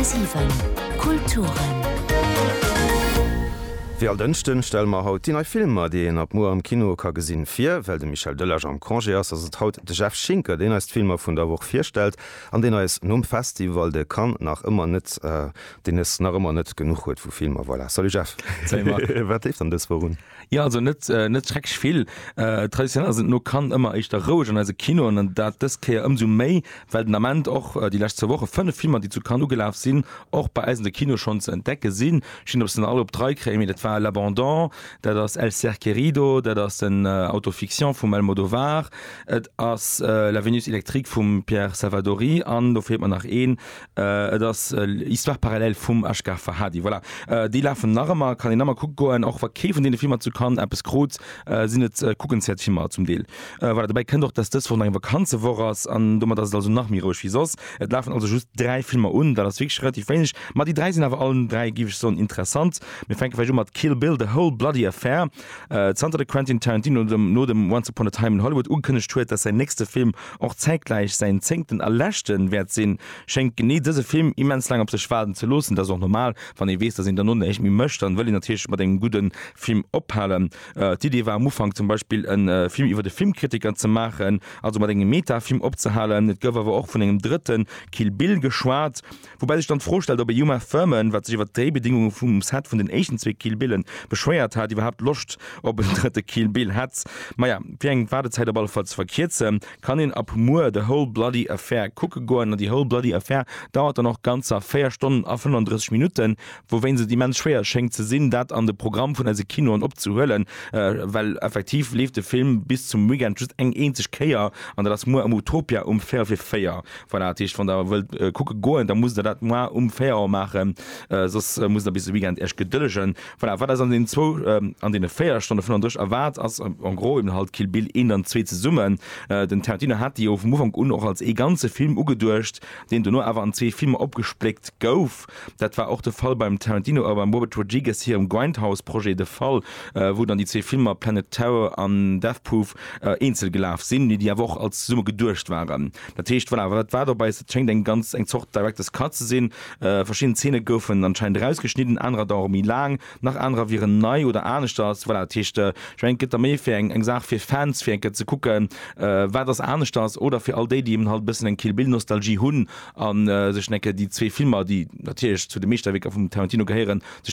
10,7 Kulturen. Wéi all Dënschden stelle mer haut déi nei Filmer, déi een ab muer am Kino ka gesinn, vir. Well de Michel Delage am Congé ass, ass et haut de Jeff Schinker, deen eis d'Filmer vun der Woch virstellt an deen eis nom Festival de Cannes nach ëmmer net, deen es nach ëmmer net genuch huet vu Filmer. Voilà, salut Jeff! Salut Marc! Wat leeft dann dës Woch un? Jo, also net net schrecklech vill. Traditionell ass et no Cannes ëmmer éischter roueg an eise Kinoen an dat dës Kéier ëmsou méi, well den Ament och déi lescht zwou Woche fënnef Filmer, déi zu Cannes ugelaf sinn, och bei eis an de Kinoe schonn ze entdecke sinn. Ech weess net, ob se nach all op d'Rei kréien, mee dat war L'Abandon, dat ass El Ser Querido, dat ass den Autofiction vum Almodovar, et ass La Vénus électrique vum Pierre Salvadori an do feelt mer nach een, Et ass Histoire parallèle vum Ashgar Farhadi. Voilà, déi lafen nach ëmmer, kann een ëmmer kucke goen, och wa kee vun deene Filmer zu Cannes eppes krut, sinn et kuckenswäert Filmer zum Deel. Voilà, dobäi kënnt och, dass dës Woch nach eng Vakanzewoch ass an domat ass et also nach méi roueg wéi soss. Et lafen also just dräi Filmer un, dat ass wierklech relativ wéineg, ma déi dräi sinn awer allen dräi, géif ech soen, interessant. Mir fänke vläicht u mat Kill Bill, The Whole Bloody Affair. Zanter de Quentin Tarantino no dem Once Upon a Time in Hollywood ugekënnegt huet, dass säin nächste Film Och zäitgläich säin zéngten a leschten wäert sinn, schéngt genee dëse Film immens laang op sech waarden ze loossen. Et ass och normal, wann ee weess, datt een dono näischt méi mécht, dann wëll een natierlech mat engem gudde Film ophalen. D'Idee war am Ufank zum Beispill e Film iwwer e Filmkritiker ze maachen, also mat engem Meta-Film opzehalen. Et gouf awer och vun engem drëtte Kill Bill geschwat. Woubäi sech dann d'Fro stellt, ob e Uma Thurman, wat sech iwwer d'Dréibedingunge vum Set vun den éischten zwee Kill Billen beschwéiert hat, iwwerhaapt Loscht op en drëtte Kill Bill hätt. Maja, fir eng Waardezäit op alle Fall ze verkierzen, kann een ab muer The Whole Bloody Affair kucke goen. An The Whole Bloody Affair dauert dann och ganzer 4 Stonnen a 35 Minutten, wouwéinst et immens schwéier schéngt ze sinn, dat an de Programm vun eise Kinoen opzehuelen, well effektiv leeft de Film bis zum Weekend just eng eenzeg Kéier, an dat ass muer am Utopia um véierel vir 4. Voilà, dat heescht, wann der wëllt kucke goen, da musst der dat moar um 4 Auer maachen, soss musst der bis de Weekend iech gedëllegen. Voilà, wat eis an deenen zwou, an deene 4 Stonne 35 erwaart, ass en gros eben halt Kill Bill 1 an 2 zesummen. Den Tarantino hat déi jo vum Ufank un och als ee ganze Film ugeduecht, deen dono awer an zwee Filmer opgespléckt gouf. Dat war och de Fall beim Tarantino a beim Robert Rodriguez hirem Grindhouse-Projet de Fall, wou dann déi zwee Filmer Planet Terror an Death Proof eenzel gelaf sinn, mee déi awer och als zesumme geduecht waren. Dat heescht, voilà, wat war dobäi? Et schéngt eng ganz eng Zort Director's Cut ze sinn. Verschidden Zeene goufen anscheinend erausgeschnidden, anerer dauere méi laang, nach anerer wieren nei oder aneschters. Voilà, dat heescht, ech mengen, et gëtt da méi fir eng eng Saach fir Fans, fir eng Kéier ze kucken, wat ass aneschters, oder fir all déi, déi eben halt e bëssen eng Kill Bill-Nostalgie hunn. a sech enke déi zwee Filmer, déi natierlech zu de Meeschterwierker vum Tarantino gehéieren, sech.